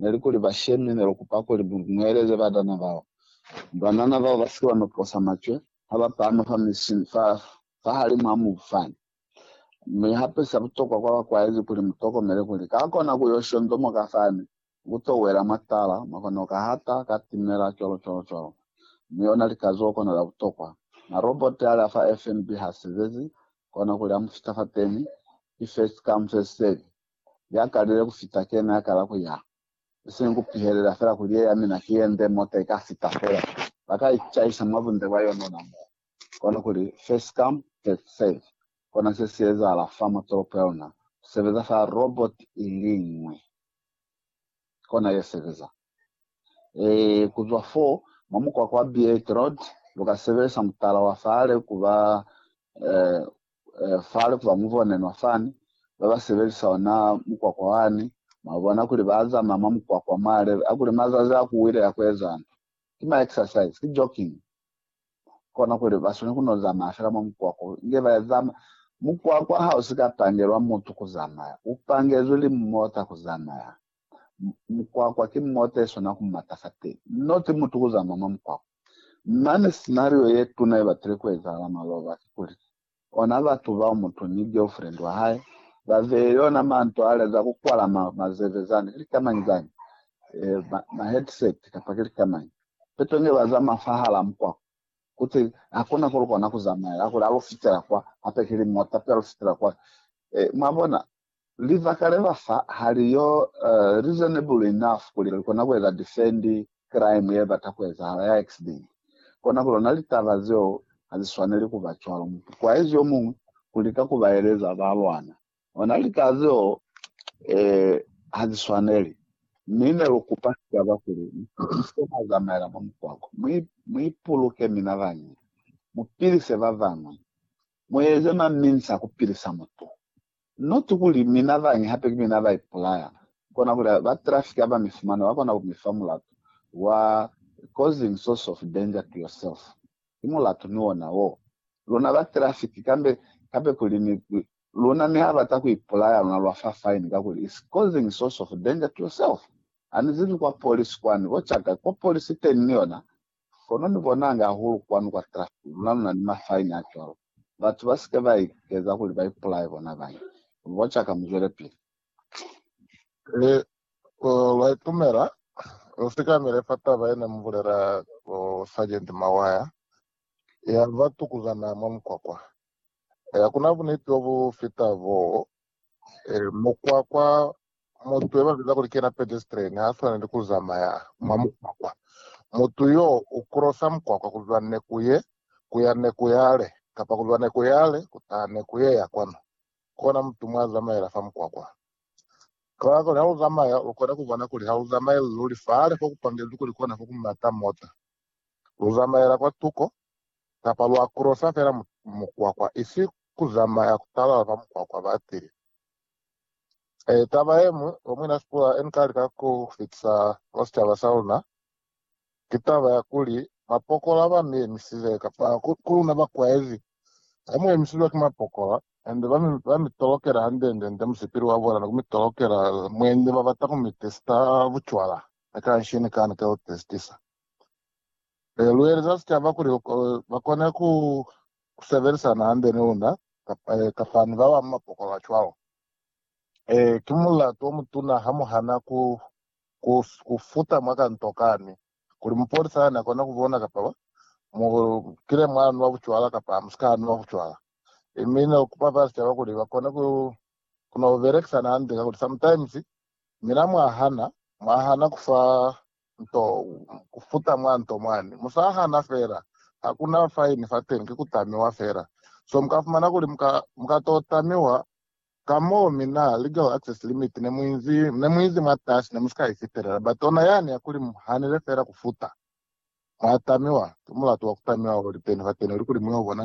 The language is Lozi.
neli kuli bashemi nelukupa kuli mueleze banana bao. Banana bao basike bano posa macwe haba pama fa mishini fa fahalimu a mubu fani. Mi hape sa butokwa kwa bakwaezi kuli mutokomele kuli ka kona kuyo shondomoka fani, kuto wela mwa tala, mwa kono kahata, ka timela, cwalo cwalo cwalo. Mi ona likazuho kono la butokwa. Na robot ali afa FNB ha sebezi, kona kuli amu fita fateni, ki first come first serve. ya kalile ku fita ke ne a kala ku ya, i sina ku pihelela fela kuli ye ya mina ki ye nde mota i ka fita fela. Ba ka icaisa mwa bunde bwa yona ona moo. Kono kuli, first come, first serve. Kona se si ezahala fa mwa tolopo ya luna. Ku sebeza fa robot i li ñwi, kona ye sebeza. Ku zwa fo, mwa mukwakwa wa Beate Road, lu ka sebelisa mutala wa fale ku ba fale ku ba mubonenwa fani. Ba ba sebelisa ona mukwakwa wani, mwa bona kuli ba zamaya mwa mukwakwa mwa lebe a kuli mazazi a ku wile ya ku ezani. Ki ma exercise, ki jogging. Kona kuli ba swaneli ku no zamaya fela mwa mukwakwa inge ba zamaya. Mukwakwa ha u si ka pangelwa mutu ku zamaya, u pangezwi limota ku zamaya. Mukwakwa ki mota yeswana ku mata fa teñi, not mutu ku zama mwa mukwakwa. Mane scenario yetuna yebatile kuezahala mwa Lova kikuli, ona batu bao mutu ni girlfriend wahae babei yona manto ale za kukwala ma mazeve zani, ki lika mañi zani? e, ma, ma headset kapa ki lika mañi? Peto nge bazama fahalaa mukwakwa, kuti hakuna kulukona kuzamaela, kuli alufitela kwa, hape kili mota pe alufitela kwa. E, mwabona, Libaka le ba fa ha li yo reasonable enough kuli li kona ku eza defend crime ye bata ku ezahala ya accident. Kona ku lona litaba zeo ha zi swaneli ku ba cwalo. Mutukwaizi yo muñwi u lika ku ba eleza ba lwana ona litaba zeo ha zi swaneli, mi ne lu kupa sicaba kuli, Mu pilise mwa zamaela mwa mukwako, mu ipuluke mina bañi, mu pilise ba bañwi, mu eze maminsa ku pilisa mutu Noti kuli mi na bañi hape ki mi na ba ipulaya, kona kuli ba trafiki haba mi fumana ba kona ku mi fa mulatu wa causing source of danger to yourself. Ki mulatu ni ona wo. Luna ba trafiki kambe hape kuli ni luna mi ha bata ku ipulaya luna lwa fa fine kakuli is causing source of danger to yourself. Ani zibi kwa polisi kwani bo chaka ko polisi teni ni yona Kono ni bonange hahulu kwanu kwa trafiki, luna luna ni mafaini a cwalo. Batu ba sike ba ikeza kuli ba ipulaye bona bañi. Boca ka, muzwelepili. Ee, ku lwa itumela. Lu sikamile fa taba ye ne mu bulela ku Sergeant Mawaya, ya ba tukuzana mwa mukwakwa. Ee, hakuna buniti bo bu fita boo, Eh, mukwakwa mutu ebabiza kuli kena pedestrian ha swaneli kuzamaya mwa mukwakwa. Mutu yo ukrosa mukwakwa kuzwa neku ye kuya neku yale, kapa kuzwa neku yale kutaha neku ye ya kwanu. Kona mutu mwa zamaela fa mukwakwa. Kabakala kuli ha uzamaya lukona kubona kuli ha uzamaeli luli fale fokupangezwi kuli kona fokumata mota. Luzamaela kwa tuko, kapa lwa kurosa fela mukwakwa, isi kuzamaya kutalala fa mukwakwa ba tile. E, taba yeñwi lwa Muina Sproul nika lika ku fitisa mwa sicaba sa luna, ki taba ya kuli, mapokola ba mi emisile, kapa ku luna bakwaezi, ha mu emisilwe ki mapokola, and ba mi, ba mi tolokela hande-nde-nde musipili wa bona, ni ku mi tolokela, mwendi ba bata ku mi testa bucwala, ni kanshi ni kani ka lu testisa. Ee, lu eleza sicaba kuli ba kone ku sebelisana hande ni luna ee, kapa ni ba bañwi mapokolo a cwalo. Ee, ki mulatu o mutuna ha mu hana ku, ku, ku futa mwa kantokani kuli mupolisa hana kona ku bona kapa ba mu kile mwa nwa bucwala kapa ha mu si ka nwa bucwala. Ee, mi ne lu kupa fa sicaba kuli ba kone ku, ku no belekisana hande kakuli sometimes mina mwa hana, mwa hana ku fa nto ku futa mwa nto mwani. Mu sa hana fela. Ha ku na faini fateni, ki ku tamiwa fela. So mu ka fumana kuli mu ka, mu ka to tamiwa ka mo mi na legal access limit ne mu inzi, ne mu inzi mwatasi, ne mu si ka i fitelela. But ona yani ya kuli mu hanile fela ku futa, mwa tamiwa, ki mulatu wa ku tamiwa o li teni fateni, o li kuli mu yo bona